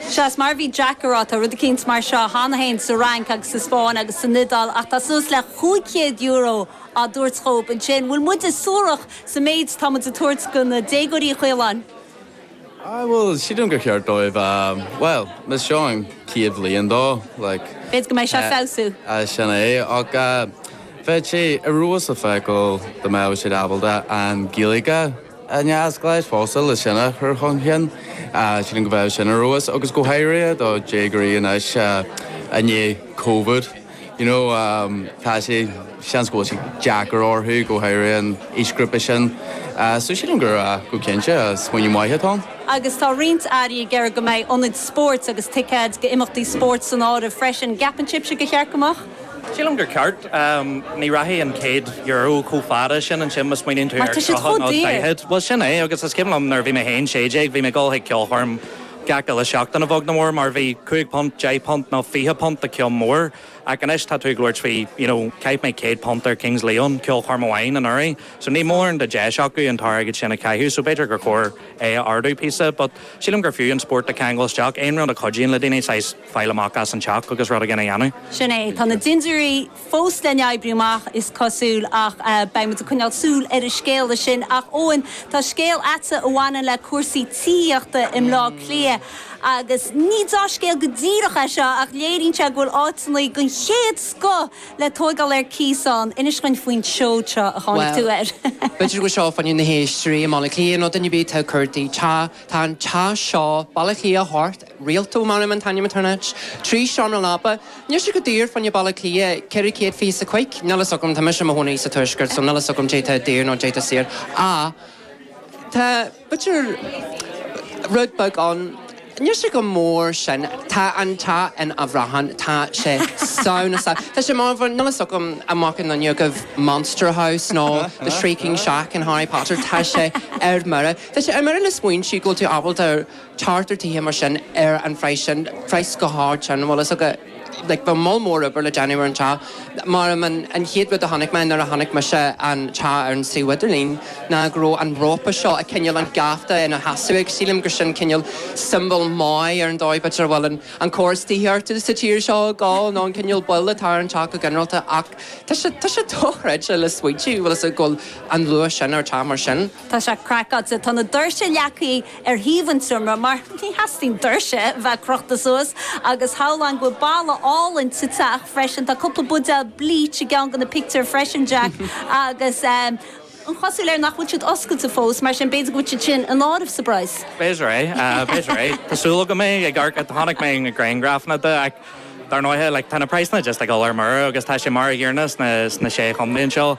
Sea mar a bhí Jack ag rá, tá rud eicínt mar seo cheana féin sa Fhrainc agus sa Spáinn agus san Iodáil ach tá suas le chúig chéad euro á dtabhairt dhób ansin. Bhfuil muide suarach sa méid atá muid ag tabhairt go na déagóirí, a Chaoláin? Ah, bhuel, sílim gur cheart dóibh, bhuel, más seo an chéad bhliain dó, like. B'fhéidir go mbeidh sé ag feabhsú. Ah, sin é, ach bheadh sé ar fheabhas le feiceáil dá mbeadh siad ábalta an Ghaeilge a. a neamhspleáchas fosta le sin a chur chun cinn, sílim go mbeadh sin ar fheabhas agus go háirithe do dhéagóirí anois i ndiaidh Covid, you know, tá sé, seans go bhfuil sé deacair orthu, go háirithe an aoisghrúpa sin, so sílim gur go cinnte smaoineamh maith atá ann. Agus tá roinnt airí ag iarraidh go mbeidh ionaid spóirt agus ticéid go imeachtaí spóirt san áireamh freisin. Gceapann sibhse go mba cheart go mbeadh? Sílim gur ceart. Ní rachaidh an céad Euro chomh fada sin ansin má smaoiníonn tú ar tríocha nó daichead. Mar tá siad chomh daor. Bhuel sin é agus is cuimhin liom nuair a bhí mé féin sé déag bhí mé ag dul chuig ceolchoirm gach uile seachtain a bheag nó a mhór mar bhí cúig phunt, deich bpunt nó fiche punt do cheann mór ach anois tá tú ag labhairt faoi you know chaith mé céad punt ar Kings Leon ceolchoirm amháin anuraidh so níl mórán de deis acu an t-airgead sin a chaitheamh so b'fhéidir gur chóir é a ardú píosa but sílim gur fiú an spórt a cheangal isteach aon rud a chuidíonn le daoine saghas fáil amach as an teach agus rud éigin a dhéanamh. Sin é. Tá na dindiúirí fós le n-oibriú amach, is cosúil, ach beidh muid ag coinneáil súil ar an scéala sin. Ach, Eoin, tá scéal agatsa a bhaineann le cúrsaí tithíochta i mBleá Cliath. Agus ní dea-scéal go díreach é seo, ach léiríonn sé go bhfuil áiteanna den chéad scoth le tóigeáil ar cíos ann. Inis dhuinn faoin tseoid seo a tháinig tú air. Bhuel, b'fhéidir go seolfainnse na héisteoirí i mBaile Átha Cliath nó duine ar bith atá ag cuartú. Tá an teach seo, Baile Átha Cliath, thart ar Rialto measaim an t-ainm atá ar an áit. Trí seomra leapa. Níl sé go daor fá choinne Baile Átha Cliath, ceithre céad fiche is a cúig. Níl fhios agam, tá mise i mo chónaí sa tuaisceart so níl fhios agam caidé tá daor nó caidé tá saor. Á tá b'fhéidir rud beag ann, níl sé go mór sin. Tá an teach ina phraiseach, tá sé scanrúil, tá sé mór mór, níl fhios agam an bhfaca none agaibh Monster House nó The Shrieking Shack in Harry Potter, tá sé ar mire. Tá sé ar mire le smaointiú go bhfuil tú ábalta, tabhairt ar tithe mar sin ar an phraghas sin, praghas go hard sin, bhfuil fhios agat, like bhí moll mór oibre le déanamh ar an teach, mar an, an chéad rud a chonaic mé nuair a chonaic mise an teach ar an suíomh idirlín ná go raibh an rópa seo, ag coinneáil an geafta ina sheasamh agus, sílim gur sin cineál symbol maith ar an dóigh, b'fhéidir a bhfuil an, an córas tithíochta sa tír seo ag gabháil nó an cineál bail atá ar an teach go ginearálta ach tá sé, tá sé dochreidte le smaointiú, bhfuil fhios agat, go bhfuil an luach sin ar teach mar sin. Tá sé craiceáilte. Tá na doirse leagthaí ar thaobh an tseomra mar theastaíonn doirse bheith crochta suas agus shamhlóinn go bhfuil balla álainn sa teach freisin. Tá cúpla buidéal bleach i gceann de na pictiúir freisin, Jack, agus an chosúlacht air nach bhfuil siad oscailte fós, mar sin b'fhéidir go bhfuil siad sin san áireamh sa bpraghas. B'fhéidir é. B'fhéidir é. Tá súil agam. Ag amharc, chonaic mé na griangrafanna de ach dar ndóighe like tá na praghsanna just ag dul ar mire agus tá sé mar an gcéanna sna sé chontae anseo.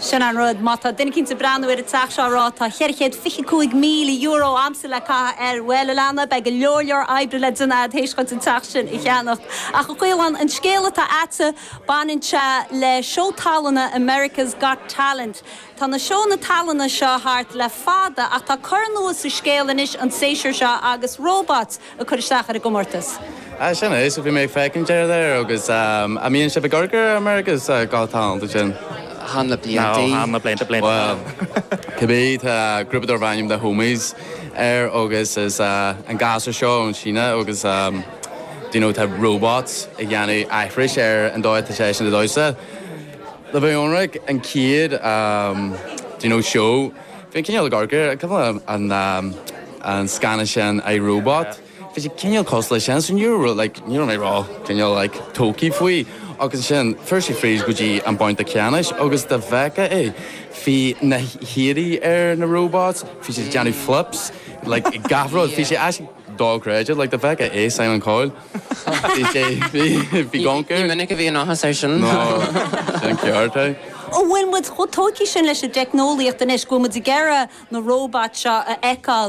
Sin an rud, má tá duine eicínt ag breathnú ar an teach seo ag rá tá cheithre chéad fiche cúig míle euro a'msa le caitheamh air, bhuel, a leana, beidh go leor leor oibre le déanamh a'd th'éis dhuit an teach sin a cheannacht. Ach a Chaolán, an scéal atá a'dsa, baineann sé le seó tallainne America's Got Talent. Tá na seónna tallainne seo thart le fada ach tá cor nua sa scéal anois, an séasúr seo agus robots ag cur isteach ar an gcomórtas. Ah sin é, so bhí mé ag feiceann deireadh air agus ahh a mbíonn sibh ag amharc ar America's Got Talent ansin. Thall na blianta í. Thall na blianta, blianta thall. Bhuel, cibé, tá grúpa darbh ainm The Homies air agus is ahh an gasúr seo ón tSín agus ahh do you know tá robots ag déanamh aithris ar an dóigh a dtá seisean ag damhsa. Ní bheidh ionraic, an chéad you know show bhí an cineál ag cur cad é an an scannán sin I, Robot bhí sé cineál cosúil leis sin so ní raibh like ní raibh mé ró cineál like tógthaí faoi agus ansin fuair sé fríd go dtí an babhta ceannais agus dá bhfeicfeá é bhí na hiarraí ar na robots bhí siad ag déanamh flips like i gach rud bhí sé actually dochreidte like dá bhfeicfeá é Simon Cowell Bhí sé, bhí, bhí gonca. Ní minic a bhíonn áthas air sin. Ná, sin ceart é. Ó bhfuil muid chomh tógtha sin leis an dteicneolaíocht anois go bhfuil muid ag iarraidh na róbait seo a fheiceáil